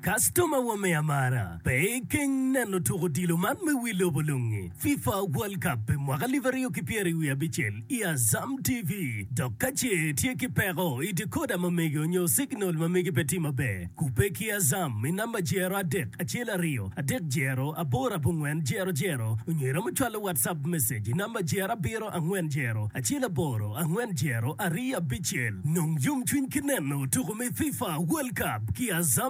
Kastoma wa me amara, pe ikeng neno tuk odilo man me wi lobo lungi, FIFA World Cup pi mwaka alib aryo ki pyeri wiye abicel i Azam TV. Dok ka ce itye ki peko i decoder ma mege nyo signal ma mege pe tye maber, kubbe ki Azam i namba jero adek acel aryo adek jero aboro abongwen jero jero onyo iromo cwalo WhatsApp message i namba jero abiro angwen jero acel aboro angwen jero aryo abicel. Nong yomcwiny ki neno tuko me FIFA World Cup ki Azam.